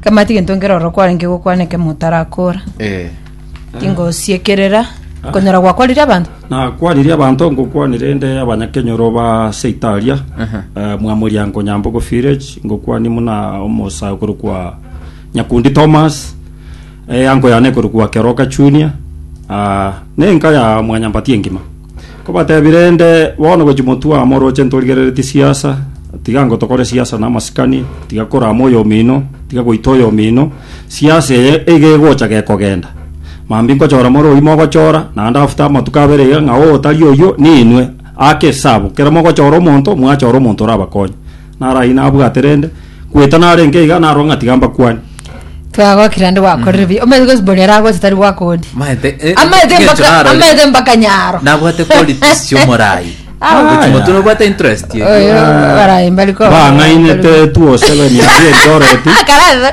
Kemati gento nkere oro kwarenge gokwana ekemo otarakoora, Eh. tingosiekerera okonyora gwakwarire abanto. Nakwaririe abanto ngokwania rende abanyakenyoro ba Seitaria eh, Mwamoriango Nyambogo Village ngokwania muna omosae okorokwa Nyakundi Thomas eh, ango yane ekorokwa Keroka Junior ah, nenka ya Mwanyambati engima Kobatebia rende, Bono gochia motwe amo oroche ntorigereretie siasa, tiga ango tokore siasa na amasikani, tiga korama oyomino, tiga goita oyomino, siasa eye iga egocha gekogenda. Mambia nkochora more oyio mogochora, naende after amatuko abere iga ng'a oo tari oyio, ninwe, ake esabu, kero mogochora omonto, mwachora omonto orabakonye. Narayi nabwate rende, kweta narenge iga narwo ng'a tiga mbakwane. Tiga gokira ande gwakorire bi. Omanyete gosi bori ara gosi tari gwakodi. Maete, eh, Amaete ng'encho mpaka narorire. amaete mpaka nyaro. Nabwate qualities chiomorai. Ah, Gochi yeah. moto nobwate interest. Oyo barayi mbari ko. Bang'ainete 207 ya Eldoret. Karara.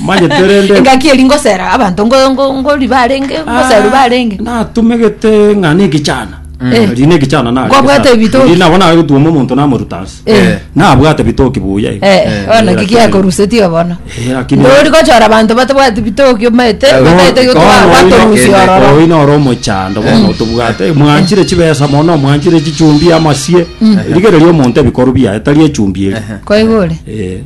Manyete rende Engaki eri ngosera abanto ngo- ngo- ngori barenge, ngoseru barenge. natumegete ng'a nekichana Eh. riri nekichana nare Kwabwate ebitoki. nabo naye gotuoma omonto namoruta ase Eh. nabwate bitoki buya iga. Eh, Eh, ona lakini- kigiakorusetie bono. Eh, lakini- Ndori gochora abanto batabwati bitoki omanyete, Eh, bataete Bono gotwara oino- batorusia eh, ororo. oino ore omochando bono tobwate mwanchire chibesa mono mwanchire chichumbi amasie rigereria omonto ebikoru biaye tari echumbi eri Kwaigure. Eh,